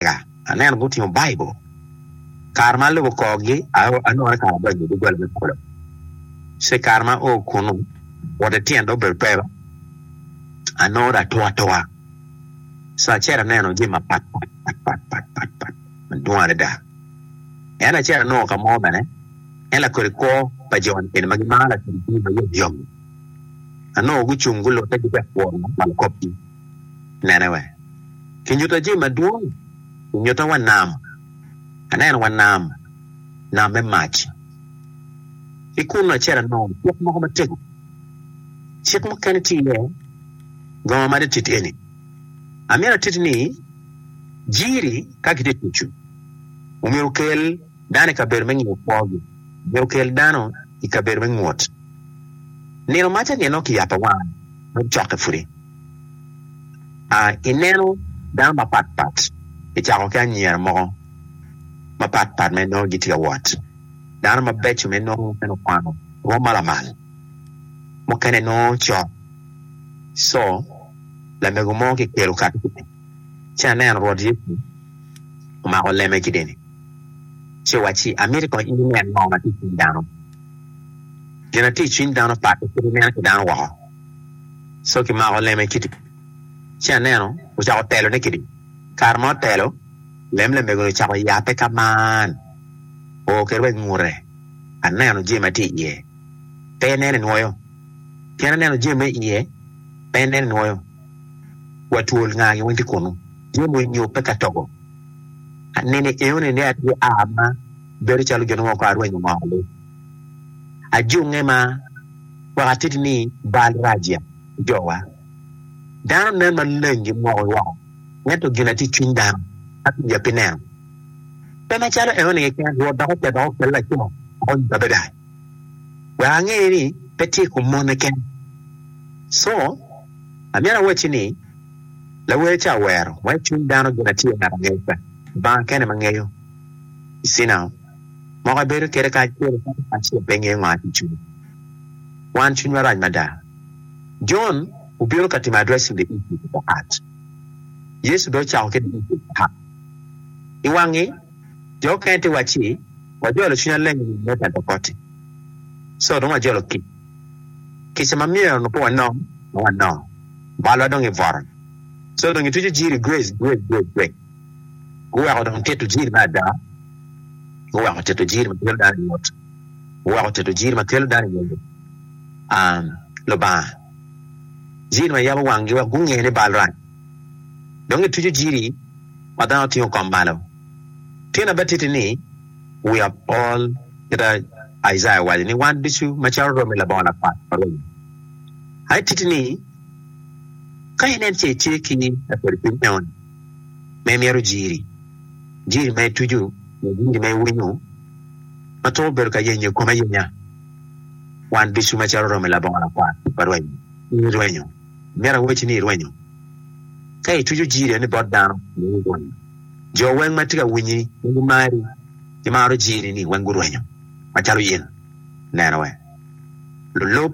lega, aneno gutingo Baibul. Kare ma alubo korgi, anongo ni kara adonyo i doggola me polo. Ci kare ma ao kunnu, woto ki tyen dog bedo pero, anongo dong atur atura. Sa acel aneno jami mapatpat madwong adada. En acel anongo ka mo bene en lakodi kwo pa jo ni ma gimaro lakodi jami ma yomyom-mi. Anongo gucung gulute gitye ka pworo lok pa lakopgi. Nene wek kinyutta jami madwong, nyutta wa nam, aneno wa nam, nam me mac. Ki kunnu acel anongo cik moko matego, cik mukene tye iye gongo ma tit eni, Amyero atiti ni, Jiri ka kitye tucu omyero okel. dano i kabedo me ngiyo kwogi me okel dano i kabedo me ngut nino maca nyen nongo kiyabo awanga me cokke pudi a ineno dano mapat pat kicako ki anyira mogo mapat pat ma inongo gitye ka wot dano mabeco ma inongo mukene okwano rwom ma lamal mukene nongo cok co lamego mo kikelo kati ci aneno Rwot Yecu omako lemme ki deni, ci owacci, Amito kong in inen ngo ma tye i cwiny dano. Gin ma tye i cwiny dano pakke kit ineno ki dano woko. Co ki mako lemme kidi, ci aneno ocako telone kidi. Kare ma otelo, lem lamego-ni ocako yape ka man, oo kwede wa i ngute, aneno jami ma tye iye, pe ineno inwoyo, pien aneno jami ma iye, pe ineno inwoyo. wa twol nga gin weng tye kunu tye mo inyo pe ka togo anene eo ni ne atye a ma bedo calo gin mo ko arwenyo ngo ali ajunge ma wek atiti ni bal raja ki jo wa dano nen ma leng gi moko woko ento gin atye cwiny dano ma pi ya pi neno pe ma calo eo ni keken rwot dok oketo dok okelo laco ma konyo kabeda. wek ange ni pe tye i kom mone kene. Co, Amyero awacci ni, lawer ca owero wa i cwiny dano gin acel ngat angeyo ca, Lubanga kene ema ngeyo icina o. Moko ibedo kwede kacel ento ngat acel pe ngeyo ngo aye i cwinyi. Wan cwinywa rac mada. Jon obino ka timo addressing the issue of the heart. Yecu dong ocako ki the issue of the heart. I wangi, Jo mukene tye wacci, Wajolo cwinya leng i nino me Pentekote, so dong wajolo kic. Kica ma myero onongo pe wanong, dong wanongo. Malwa dong gibworo, so dong gitwico jiri gwec gwec gwec gwec. Guweko dong tito jiri me ada, guweko tito jiri ma kelo dano i ot, guweko tito jiri ma kelo dano i ot Lubanga, jiri ma yabo wanggi wek gunge ni bal rac. dong ituco jiri ma dano tingo kom malo. Tye na batitti ni wi apol kit ma Icaya owaco ni wan ducu macalo romi labongo lakwat pa romi. Aye titti ni ka in en ce itye ki lakodi cwiny meno ni ma imyero jiri, jiri ma ituco nyo jiri ma iwinyo ma twero bedo ka yenyo ikomi ayenya. Wan ducu macalo romi labongo lakwat pa romi, in irwenyo. Myero awacci ni irwenyo ka ituco jiri-a ni bot dano ma gurwenyo. Jo weng ma tye ka winyi ma gimari ki maro jiri-ni weng gurwenyo macalo in. Neno wek lulub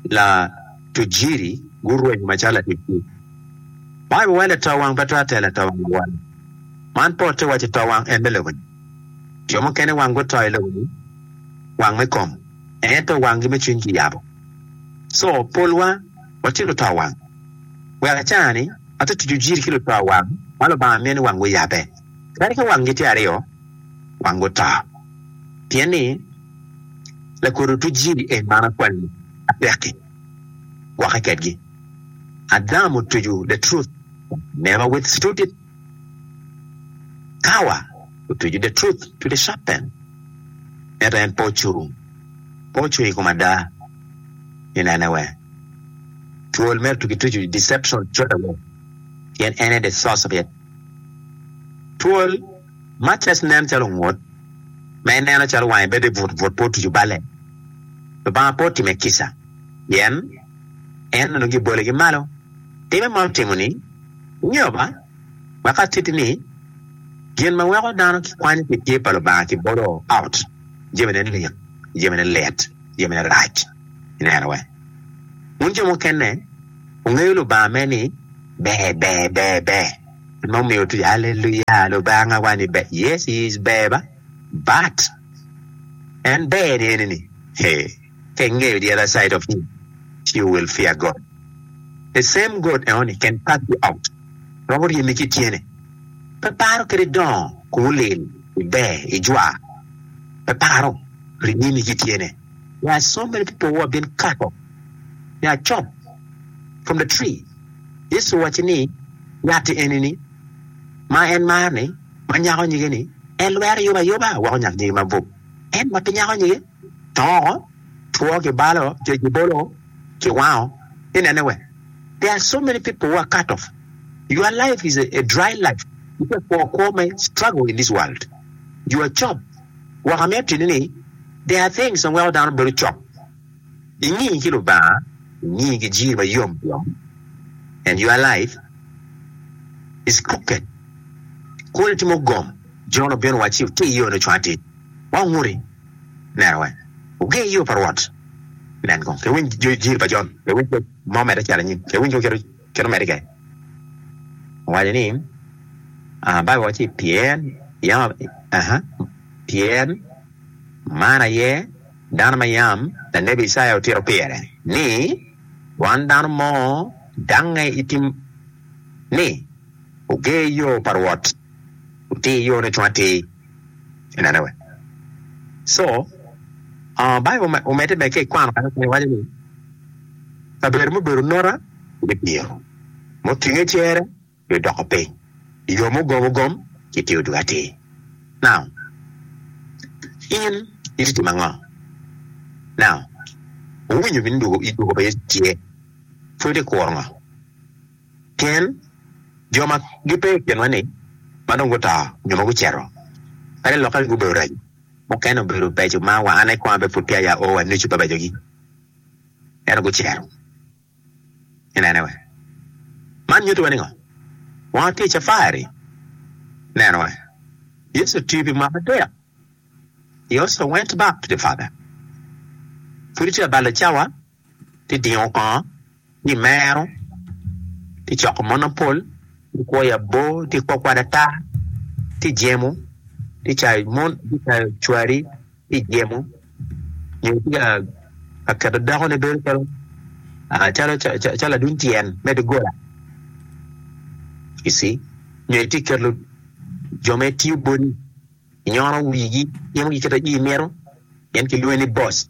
latuc jiri gurwenyo macalo latuc jiri. Baibul waco lato wang pe twero telo lato wang awol. Man pote waco to wang en me lobo-ni. Jo mukene wang guto i lobo-ni wang me kom, ento wangi me cwiny kiyabo. So polwa watye luto wang. Wek acar ni, ati tucu jiri ki luto wang ma Lubanga mini wang guyabe. Kadi ka wang gitye aryo, wang guto. Pien ni, lakodo otu jiri en man akwalli, apekki, gwokke kedgi. Adam otucu the truth, never with stood it. Kawa otuco The Truth to the Sharp Pen, ento en pe ocung, pe ocung i kom ada. I nene wee, twol mere tuki tucu i deception codaway, pien en aye the source of it. Twol, much as nen calo ongut, ma ineno calo wange bedo i but but pe otuco balle. Lubanga pe otime kica, pien En onongo giboligi malo. Time ma otimo ni. Ingeyo ba wek atitti ni, gin ma weko dano kikwanyo pi tye pa Lubanga kibolo out, jamine lik, jamine lit, jamine rac. Ineno we? Wun jo mukene wungeyo Lubanga me ni ber, ber, ber, ber. En ma omiyo otwir, Haleluya, Lubanga wa ni ber. Yes, He is ber ba, but En ber-ni eni-ni, hee. kek ngeyo the other side of him she will fear God the same God enoni can cast you out dok oryemi ki tyene pe paro kadi dongo kong olil iber ijwar pe paro ryemi ki tyene there are so many people who have been cut off they are chop from the tree Yecu owaco ni yatti enini ma en mar ni ma nyako nyige ni en lwero yuba yuba weko nyak nyige mabup en ma pe nyako nyige toko, two ki balo, cwec ki bolo, ki wango. Inene we? There are so many people who are cut off. Your life is a dry life. Itye kwo kwo me struggle in this world. You are cop. Wok amiyo atini ni there are things ma weko dano bedo cop. Ingi ki Lubanga, ingi ki jir ma yom yom and your life is crooked. Kul itimo gom, Jon obino wacci otir yone cwang atir. Wa woti neno wek wuger i yo pa Rwot. Nen kong, kewiny jir pa Jon, kewiny kec ma omedde cito anyim, kewiny kong kit omedde kec. Owaco ni, Baibul waco ni, Pien, yam, aha, pien man aye dano ma yam lanebi Icaya otito pire, ni, Wan dano mo dangnge i tim, ni, Wuger yo pa Rwot, wuti yone cung atir. inene wee so uh, Bible omedde bene ki i kwano kare kare waco ni kabedo mubedo nota me diro mutinge cere dwe doko piny yo mugom ogom ki tio dwe atir now in iti timo ango now owinyo bini dwogo pa Yecu tye pwod ikuro ngo Pien jo ma gipe i kinwa-ni ma dong guto nyo ma gucito, kadi lokke gubedo raco, mukene obedo beco ma wa an kong abe pud peya aye ao wa nucu babecogi, ento gucito. Inene we? Man nyuto wa ningo? Wan watye i cafari. Neno we. Yecu otiyo pi mwaka adek. He also went back to the Father. Pud itye ka balo cawa. tye dingo kongo ni mero tye coko mon mapol tye kwoyo abo tye kwo kwad ata tye jemo tye cayo mon tye cayo cwari tye jemo nyo tye ka keto dako ne bedo calo calo calo ladwiny tyen me dogola you see nyo tye keto jo mere tiyo boti nyono wigi timo gin kit ma in imito pien kilwongi ni boss.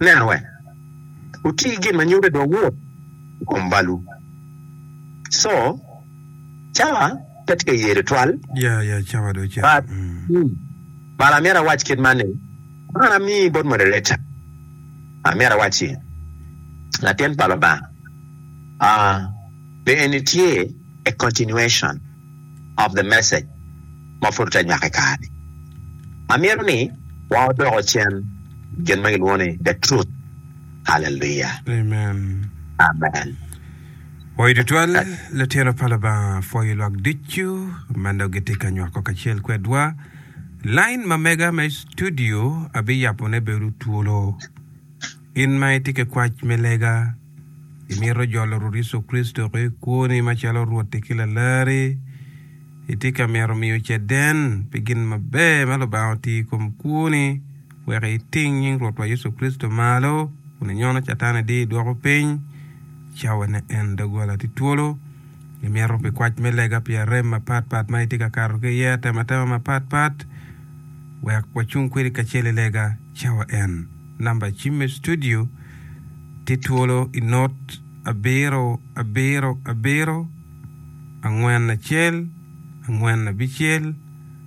Neno wek wuti gin ma nyuto i dog Wod i kom balwu. Co. Cawa pe tye ka yee tutwal, but bala amyero awac kit man ni, Kwan ami bot moderator, amyero awac ni, Latin pa Lubanga, a, be eni tye a continuation? of the Message ma pud tye anywaka i kare-ni. Amito ni wa odoko cen gin ma gilwongo ni The Truth. Haleluya! Amen. Amen. Woyo tutwal, litino pa Lubanga pwoyo lwak ducu ma nongo gitye ka nywako kacel kwedwa. Lain ma mega me studio abiyapone bedo twolo. In ma itye ki kwac me lega, Imito jolo Rwot Yecu Kricito ki kwoni macalo Rwotti ki Lalarri? Itye ka mito miyo caden pi gin maber ma Lubanga otiyo i kom kwoni wek iting nying Rwotwa Yecu Kricito malo kun inyono Catan idi idwoko piny cawane en? Doggola tye twolo. Imito pi kwac me lega pi arem mapatpat ma itye ka kato ki iye atematema mapatpat wek wacung kwedi kacel i lega? Cawa en. Namba cim me studio tye twolo i not abiro abiro abiro angwen acel angwen abicel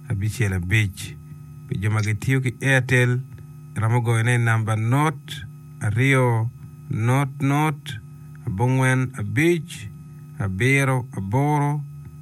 abicel abic. Pi jo ma gitiyo ki Airtel, iromo goyone i namba not aryo not not abongwen abic abiro aboro.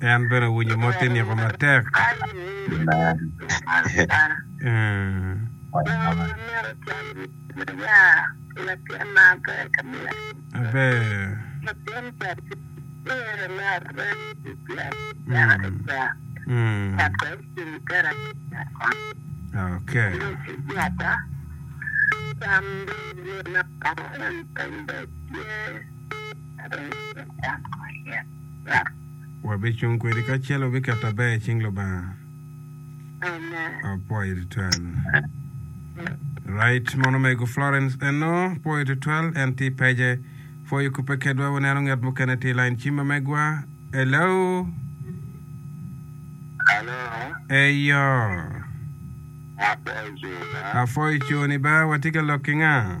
En bene owinyo mo tye niko matek. Aber. Wabicung kwedi kacel wabiketo aber i cing Lubanga. Apwoyo tutwal. Right, mon omego Florence eno, pwoyo tutwal, en tye i page. Pwoyo kubbe kedwa, waneno ngat mukene tye i line ci ma megwa. Hello? Alo, Eyo. apwoyo cona. Apwoyo coni ba, watye ka lok ki nga?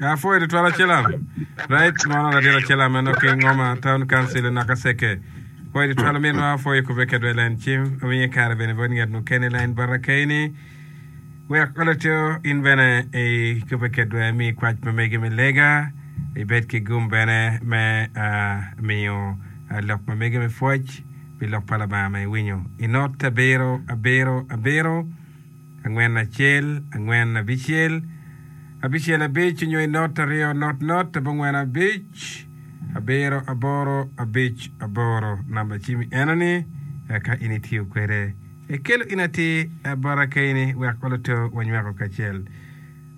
Apwoyo tutwal acilam right mono ladit acilam meno ki ngoma town council naka seke pwoyo tutwal minwa apwoyo kube kedwa i lain cim awinye kare bene bot nget mukene lain bota kayini wek oletyo in bene i kube kedwa mi kwac pa megi me lega ibed ki gum bene me miyo lok pa megi me pwoc pi lok pa labanga ma iwinyo inot abiro abiro abiro Angwen acel, angwen abicel, abicel abic nyo i not aryo not not abongwen abic, abiro aboro abic aboro. Namba cimi eno ni eka in itiyo kwede. Ekelo in atir abara kayini wek oloto wanyweko kacel.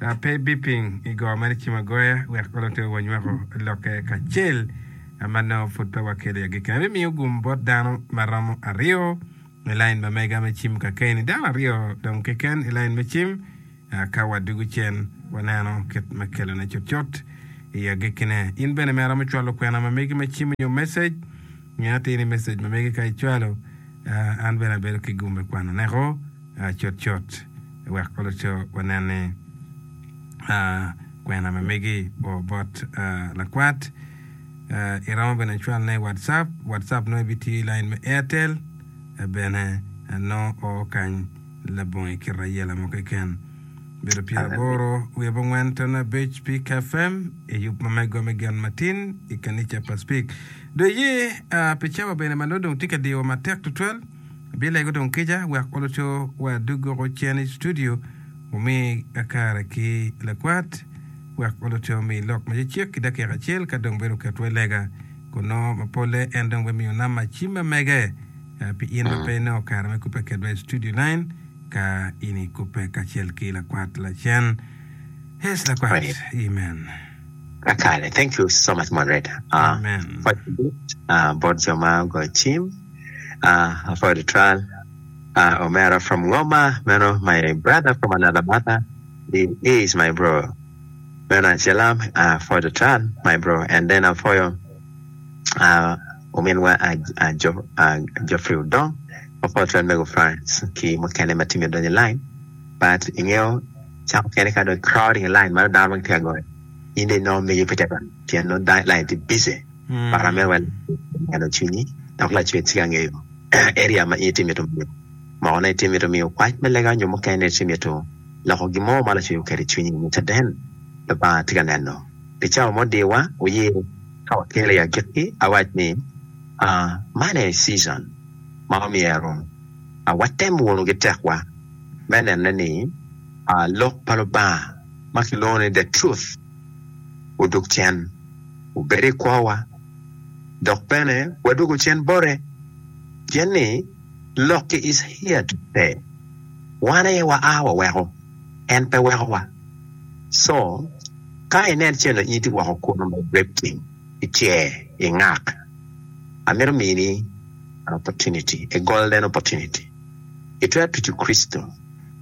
A, pe biping i go mere cim agoya wek oloto wanyweko lokke kacel ma nongo pud pe wakelo i agikki. Abimiyo gum bot dano ma romo aryo. I lain ma mega me cim kakeni, dano aryo dong keken i lain me cim. Ka wadwogo cen, waneno kit ma kelone cutcut i agekkine. In bene me aromo cwalo kwena ma megi me cim nyo message? Nge atir ni message ma megi ka icwalo, an bene abedo ki gum me kwano neko cutcut wek oluto wanen ni kwena ma megi oo bot lakwat. iromo bene cwalona i WhatsApp, WhatsApp nongo ibitiyo i line me Airtel bene nongo oo kany labongo i kite ayela mo keken. Bedo pyer aboro wiye bongwen tono abic Peak FM i yub ma mego me gen matin i kanica pa Spik. Do iye ah, pi cawa bene ma nongo dong tye ka diyowa matek tutwal, abilego dong kica wek oluto wa dog woko cen i studio Wumi akara ki lakwat, wek onongo te omi lok ma cecek ki dakika acel, ka dong bedo oketwa i lega. Kun nongo ma polle en dong bimiyo Nama cim ma mege. Ah, pi in ma pe inongo kare me kubbe kedwa i studio nine, ka in ikubbe kacel ki lakwat lacen. Yes, lakwat. Praise. Amen. Akare. Thank you so much moderator. Ah, Amen. Pwod kibit, ah, bot jo ma ogoyo cim, ah, for the trial. Ah omera from ngoma meno my brother from another mother he is my bro meno acelam ah for the tran my bro and then apoyo ah ominwa ah jo ah Geoffrey Odong apoyo tran mego Franc ki mukene ma tye myero odony i line but ingeyo cako kene ka dong crowding i line meno dano dong gitye ka goyo in dong inongo megi pe tye ka dony pien nongo line tye busy but amyero wa meno cwinyi dok lacwec tye ka ngeyo. Eria ma in itye mito miyo mokone, itye mito miyo kwac me lega nyo mukene itye mito loko gin mo ma lacweyo keri cwinyi me caden, Lubanga tye ka neno. Pi cawa mo dirwa, wuye ka wakelli agikki awac ni, aa, man aye season ma omyero aa watem wunu ki tekwa me nene ni aa lok pa Lubanga ma kilwongo ni The Truth odok cen, obedo i kwowa. dok bene wadwogo cen bote, pien ni lok ki Iciya tute, wan aye waa waweko, en pe wekowa. Co, ka inen calo iti woko kunu me Brepti ki cer i ngak, amito mini an opportunity, a golden opportunity. Itwero tucu Kricito,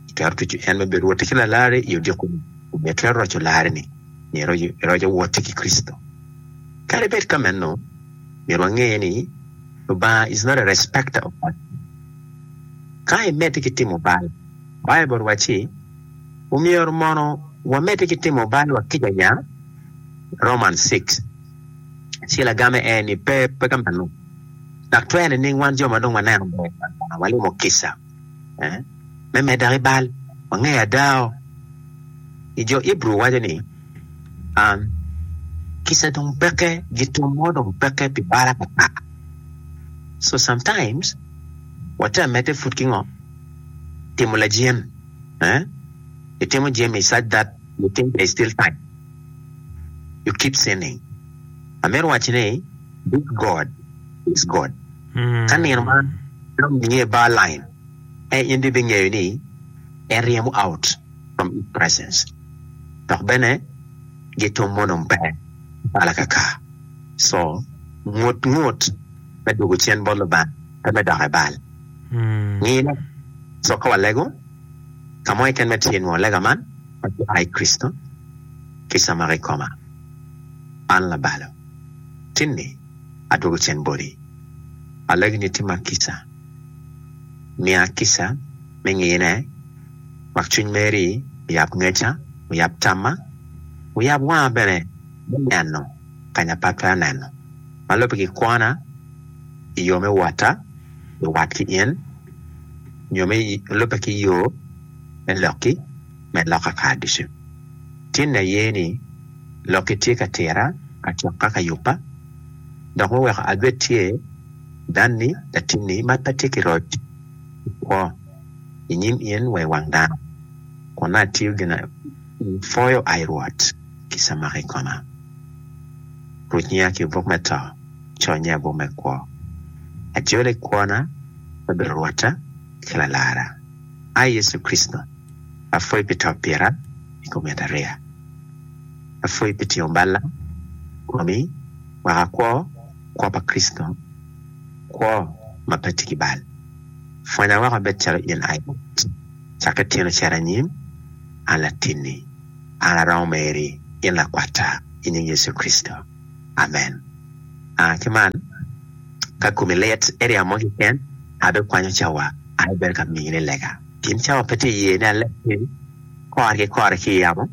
itwero tucu en me bedo Rwotti ki Lalari i odiko-ni, omyero itwero roco lari-ni, myero iroc Rwotti ki Kricito. Kadi bed ka meno, myero wange ni Lubanga is not a respecter of persons. Ka imedde ki timo bal, Baibul wacci omyero mono wamedde ki timo balwa kica nya, Romans six. Ci lagamme en ni, Pe, pe ka meno, dok twerre nining wan jo ma dong waneno ber pa Lubanga walimo kica? me medda ki bal. Wangeyo ada o ni jo Ibru waco ni, Kica dong peke, gitum mo dong peke pi bal atata. So sometimes wate ka medde pud ki ngo? Timo lajien. Itimo jami such that you think there is still time. You keep sinning. Amito wacci ni, This God is God. Ka nino man dong niye bar line e, in bibingeyo ni en ryemo out from His presence. Dok bene gitum mono mpe bal akaka. So, ngut ngut me dwogo cen bot Lubanga pe me dokke bal. Ngine, so ka walego ka mo keken me tye nwo lega man ma ki ai Kricito, kica mako ikoma. Man labalo. Tinni. adwogo cen boti. Alagi ni itimma kica, miya kica me ngine, mak cwiny meri, wuyab ngeca, wuyab tamma, wuyab wanga bene me neno kany apat pe aneno, ma lubbe ki kwona i yo me wota luwat ki in, nyo me lubbe ki yo me lokki. me lok kakaar ducu. Tin aye ni lokki tye ka tira acok ka ka yubba, dok me weko adwet tye, danni, latinni, ma pe tye ki roc, okwo i nyim in wa i wang dano, kun nongo atiyo gin apwoyo ai Rwot ki camaka i koma. Ruc nyiya ki buk me to, co nyiya i buk me kwo. Ajole i kwona, me bedo Rwotta ki Lalarra. Ai Yecu Kricito, apwoyi pi to pira i kom yat ariya. Apwoyi pi tingo balla komi waka kwo, kwo pa Kricito, kwo ma pe tye ki bal. Pwonya woko abed calo in ai bot cakke tyeno cito anyim. An latinni, an aromo meri, in lakwatta, i nying Yecu Kricito. Amen. Ah, ki man, ka komi lit, iryemo mo keken, abikwanyo cawa, aye bedo ka miyoni lega. Gin cawa pe tye iye ni alek ki kore ki kore ki i yamo,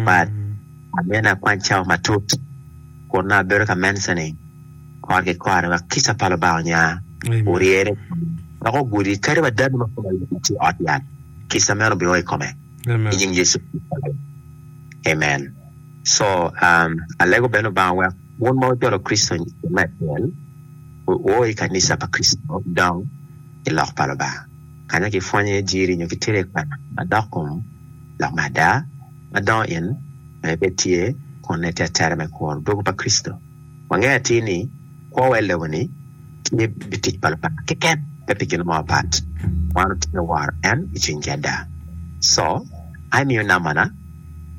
but amyero ni akwany cawa matut, kun nongo abedo ka menca ni kore ki kore wek kica pa Lubanga onya oryere i kome, wek ogudi kadi wa dano ma kome lit-ti tye i ot yat, kica meno bino o i kome. I nying Yecu Kricito, amen. So, alego bene Lubanga wek wun ma wujolo Kricito i kine me acel, wuo i kanica pa Kricito, wudong i Lok pa Lubanga, kanya kipwonyo iye jiri nyo kitito iye kwena madok kom lok me ada, ma dongo in ma ibed tye kun itettere me kuro dwogo pa Kricito. Wangeyo atir ni kwo wel lobo ni tye pi tic pa Lubanga keken, pe pi gin mo mapat. Wan otye woro en i cwinygi ada. Co, a imiyo nambana,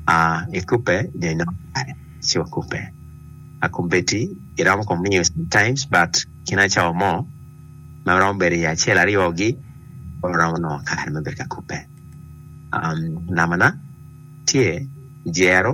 a ikubbe nyo inongo kare ci wakubbe. A kombeddi iromo kong miyo sometimes but kine acawa mo ma romo bedo iye acel aryo gi oromo nongo kare me bedo ka kubbe. Um, nambana tye, jero.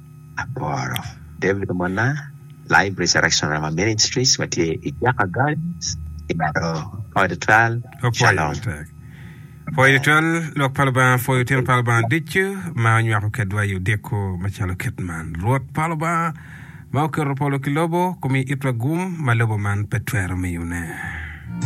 aboro. David omona Live Resurrection Rhema Ministries ma tye i Jaka Gardens i Laro Poi Tutwal, Shalom. Poi Tutwal, Lwak pa Lubanga pwoyo tyen pa Lubanga ducu ma onywako kedwa i odiko macalo kit man. Rwot pa Lubanga ma oketo polo ki lobo, omiyo itwa gum ma lobo man pe twero miyone.